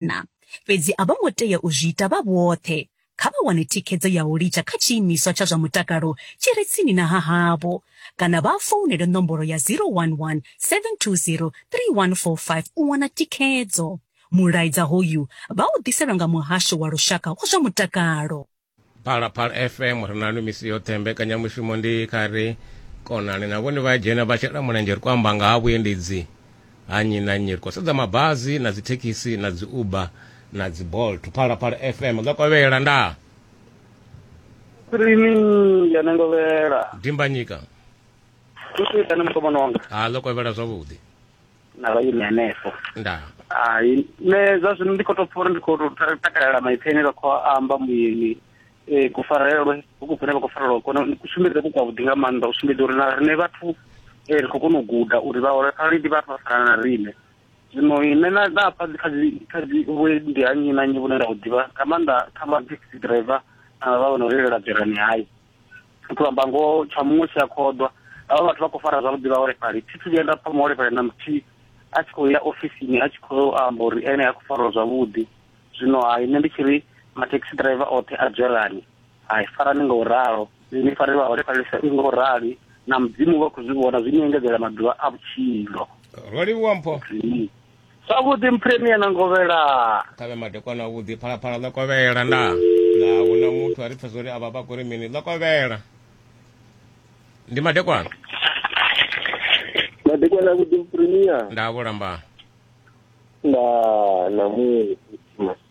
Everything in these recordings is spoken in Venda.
na. Fhedzi a vho ngo tea u zwi ita vha vhoṱhe. Kha vha wane thikhedzo ya u litsha kha tshiimiswa tsha zwa mutakalo tshi re tsini na ha havho kana vha founele nomboro ya 011 720 3145 u wana thikhedzo. Mulaedza hoyu vha u ḓiselwa nga Muhasho wa Lushaka wa zwa Mutakalo. phalaphala fm ri nanu misi yoṱhe mbekanyamushumo ndi kha ri konani na vhone vha dzhena vha shela mulenzhe ri khou amba nga ha vhuendedzi ha nnyi na nnyi ri khou sedza mabazi na dzithekhisi na dzi uber na dzi bolt phalaphala fm nga kovhela nda rini ya nengovhela dimbanyika kusitane mukomana wanga ha ḽo kovhela zwavhuḓi na vha ine hanefho nda hai nṋe zwa zwino ndi khou tou pfa uri ndi khou tou ta- takalela maipfi ane vha khou a amba muyeni um kufarelwe huku kune vha khou farelwa kone ni kusumbedze ku kwavhuḓi nga maanḓa u sumbedza uri na rine vhathu um ri khou kona u guda uri vhaholefhali ndi vhathu vha fana na rine zwino ine na na pfa dzi kha dzi kha dzi vhuendi ha nnyi na nnyi vhune nda u ḓivha nga maanḓa kha ma taxi driver na vha vho no reilela dzerani hai to amba ngoho tsha muṅwe tshi a khoḓwa avha vhathu vha khou fara zwavhuḓi vhaholefhali thi thu vhuya nda pfa muholefhali na muthihi a tshi khou ya ofisini a tshi khou amba uri ene ha khou fariwa zwavhuḓi zwino hai nṋe ndi tshi ri mathekhisi driver oṱhe a dzwelani hai farani nga u ralo ni farele vhaholefhali sa i nga u rali na mudzimu vha khou zwi vhona zwi ni engedzela maḓuvha a vhutshilo ro livhuwa mpho Zwavhuḓi mphiremia na ngovhela. Ṱavhe madekwana avhuḓi phalaphala ḽo kovhela nda. Na huna muthu a ri pfesa uri avha vha kho ri mini ḽo kovhela. Ndi madekwana. Madekwana avhuḓi mphiremia. Nda vhulamba. Nda na mu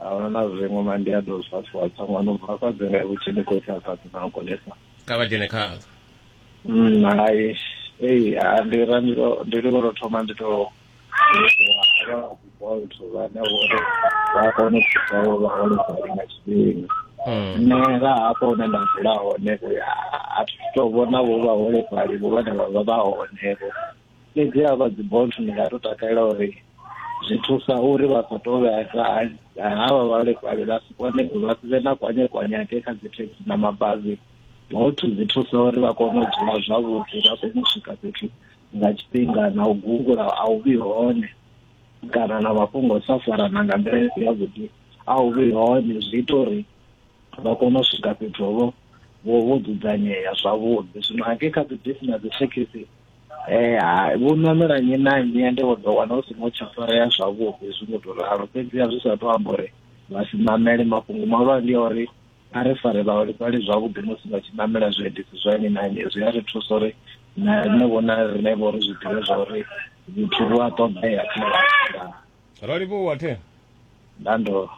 ahuna na zwiṅwe ma ndi a ḓo zwa tshiwa tsha ṅwana u bva fhadze nga vhutshi ndi khou tsha fhadze na konesa kha vha dzhene khazwo mm, hai ei ndi ra ndi ḽo ro thoma ndi to bolt vhane vhori vha kone u thusa vho vhaholefhali nga tshifhinga mm. nṋe nga hafho hune nda dzula hone a thi to vhona vho vhaholefhali vho vhane vha vha vha hone vho fhedzi ha vha dzi bolt ndi nga to takalela uri zwi thusa uri vha sa tou vhesa ha vha vhalefhali vha si kone vha si vhe na kwanye kwanyake kha dzi thekhisi na mabazi bolt dzi thusa uri vha kone u dzula zwavhuḓi vha kone u swika fhethu nga tshifhinga na u gungula a u vhi hone kana na mafhungo sa farana nga nḓila i si yavhuḓi a u vhi hone zwi ita uri vha kone u swika fhethu vho vho dzudzanyea zwavhuḓi zwino hangei kha dzi bisi na dzi thekhisi Eh, ha- vho ṋamela nnyi na nnyi ende vho ḓo wana hu songo tsha farea zwavhuḓi zwi ngo tou ralo fhedziha zwi sa tou amba uri vha si ṋamele mafhungo mahulwane ndi a uri a ri fare vhaholefhali zwavhuḓi musi vha tshi ṋamela zwiendedzi zwa nnyi na nnyi zwi a ri thusa uri na riṋe vhona riṋe vho ri zwi ḓivhe zwa uri vhuthu vhu a ṱoḓea kha vhathu. ro livhuwa the nando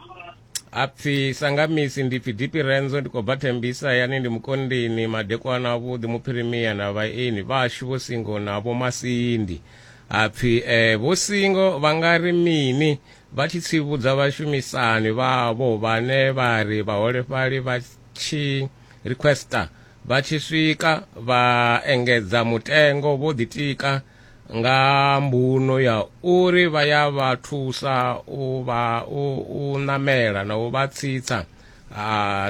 apfi sangamisi ndi pfi dipi renzo ndi khou bva thembisa yani ndi mukondini madekwana avhuḓi muphirimia na vhaeni vhashu vho singo na vho masindi apfi eh, vho singo vha nga ri mini vha tshi tsivhudza vhashumisani vhavho vhane vha ri vhaholefhali vha tshi requesta vha tshi swika vha engedza mutengo vho ḓitika nga mbuno ya uri vha ya vha thusa u vha u, u namela na u vha tsitsa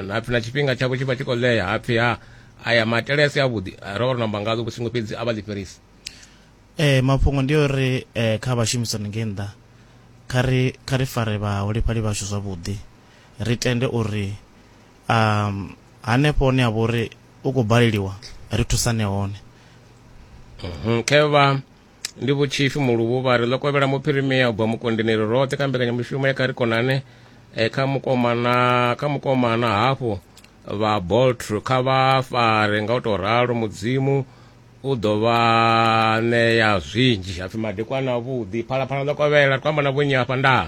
hapfi na tshifhinga tshavho tshi vha tshi khou ḽea hapfi ha aya maitele a si avhuḓi ro vha ro namba ngazwo vhusingo fhedzi a vha ḽi fhelisa eh mafhungo ndi uri eh kha vhashumisani ngei nnḓa kha ri kha ri fare vhaholefhali vhashu zwavhuḓi ri tende uri um hanefho hone ha vha uri u khou baleliwa ri thusane hone mhm, khevha ndi vhutshifhi muluvhu vha ri ḽo kovhela muphirimia u bva mukondini ri roṱhe kha mbekanyamushumo ya kha ri konane e, kha mukomana kha mukomana hafhu vha boltr kha vha fare nga u tou ralo mudzimu u ḓo vha ṋea zwinzhi hapfi madekwana avhuḓi phalaphala ḽo kovhela ri khou amba na vhonyi hafha ndaa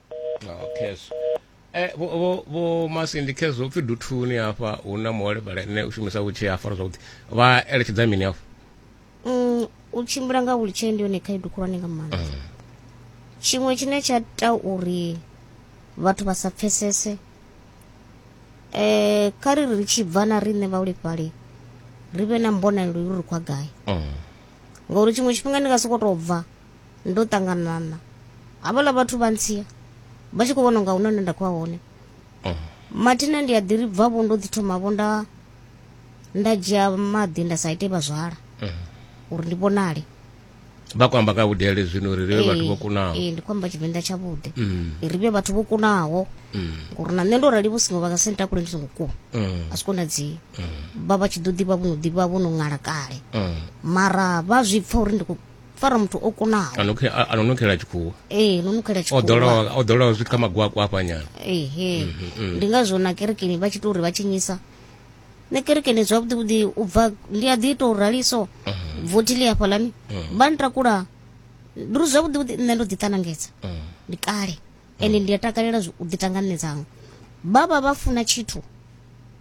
khezwo eh, vho masindi khezwo upfi duthuni hafha hu na muholefhali ane u shumisa vhutshee ha fara zwavhuḓi vha eletshedza mini hafho mm, u tshimbila nga wheelchair ndi yone khaedu khulwane nga maanḓa mm. tshiṅwe tshine tsha ta uri vhathu vha sa pfesese eh kha ri ri tshi bva na riṋe vhaholefhali ri vhe na mbonalelo yo ri khwa gai mm. ngauri tshiṅwe tshifhinga ndi nga sokou tou bva ndo ṱangana na havhala vhathu vha ntsia vha tshi khou vhona unga huna hune nda khou ya hone mm. mathina ndi a ḓi ri bva vho ndo ḓi thoma vho nda nda dzhia maḓi nda sa ite vhazwala mm. uri ndi vhonale vha khou amba nga vhudele zwino uri ri vhe vhathu vho kunaho ee ndi khou amba tshivenḓa tshavhuḓi mm. ri vhe vhathu vho kunaho ngori na nṋe ndo rali vho singo vha nga senta kule ndi songo kuwa a zwi konadzei vha vha tshi ḓo ḓivha vho no ḓivha vho no ṅala kale mara vha zwi pfa uri ndi fara muthu o kunaho a no nukela tshikhuwa ee no nukela tshikhuwa o ḓolaho zwithu kha magwakwa hafhanyana ehe mhm, mhm. ndi ngazwo na kerekeni vha tshi tou uri vha tshinyisa nṋe kerekeni zwavhuḓi vhuḓi u bva ndi a ḓi ita u raliso mhm. vothi ḽi hafhaḽani vha ntakula ndi uri zwavhuḓi vhuḓi nṋe ndo ḓiṱanangedza ndi kale ende ndi a takalela u ḓitanga nṋe dzanga vha vha vha funa tshithu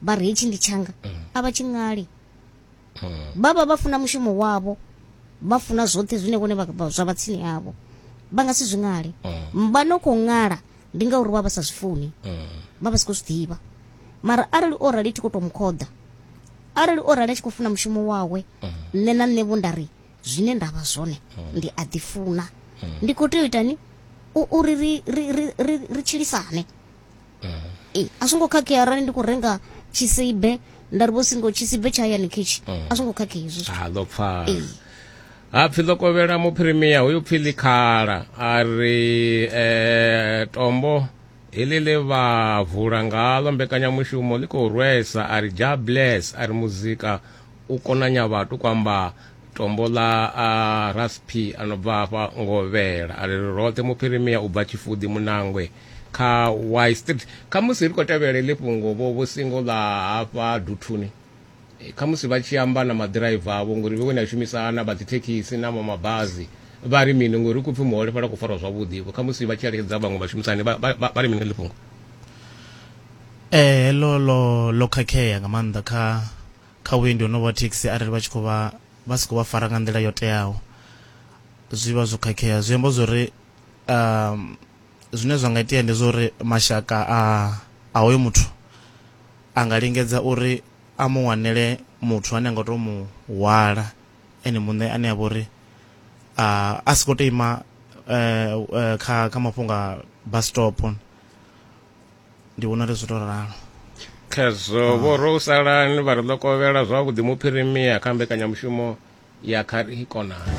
vha ri hetshi ndi tshanga a vha tshi ṅali vha vha vha funa mushumo wavho vha funa zwoṱhe zwine vhone zwa vha tsini havho vha nga si zwi ṅale vha no khou ṅala ndi ngauri vha vha sa zwi funi vha vha si khou zwi ḓivha mara arali o rali thi khou tou mu khoḓa arali o rali a tshi khou funa mushumo wawe nṋe na nṋe vho nda ri zwine nda vha zwone ndi a ḓifuna ndi khou tea u itani uri ri ri ri ri tshilisane Eh, a zwo ngo khakhea arali ndi khou renga tshisibe nda ri vho singo tshisibe tsha hayani khetshi a zwo ngo khakhea izwo zwithu. ha ḓo pfala Ee. hapfi ḽo kovhela muphirimiya hoyu pfi ḽikhala a ri eh, tombo heḽi ḽe vha vula ngaḽo mbekanyamushumo ḽi khou rwesa a ri ja bless a ri muzika u konanya vhathu kwamba tombo ḽa ah, rasp a no bva hafha ngovhela a ri ri roṱhe muphirimiya u bva tshifudi munangwe kha y street khamusi ri khou tevhela iḽi fhungo vho vho singo ḽa hafha duthuni eh, khamusi vha tshi amba na maḓiraiva avho ngori vhe kone a shumisana vha dzithekhisi na mamabazi vha ri mini ngori ku pfi muholefhala ku farwa zwavhuḓi vho khamusi vha tshi eletshedza vhaṅwe vhashumisani vha ri mini ḽi fhungo eh lo lo lo khakhea nga maanḓa kha kha vhuendi honovho wa thekhisi arali vha tshi khou vha vha si khou vha fara nga nḓila yo teaho zwi vha zwo khakhea zwi amba zwori um zwine zwa nga itea ndi zwa uri mashaka a a hoyo muthu a nga lingedza uri a mu wanele muthu ane a nga to mu hwala ene muṋe ane a vha uri a si khou to ima eh, eh, kha kha mafhungo a bus stop ndi vhona ri zwi to ralo khezwo ah. vho ro salani vha ri ḓo kovhela zwavhuḓi muphirimia kha mbekanyamushumo ya kha ri konani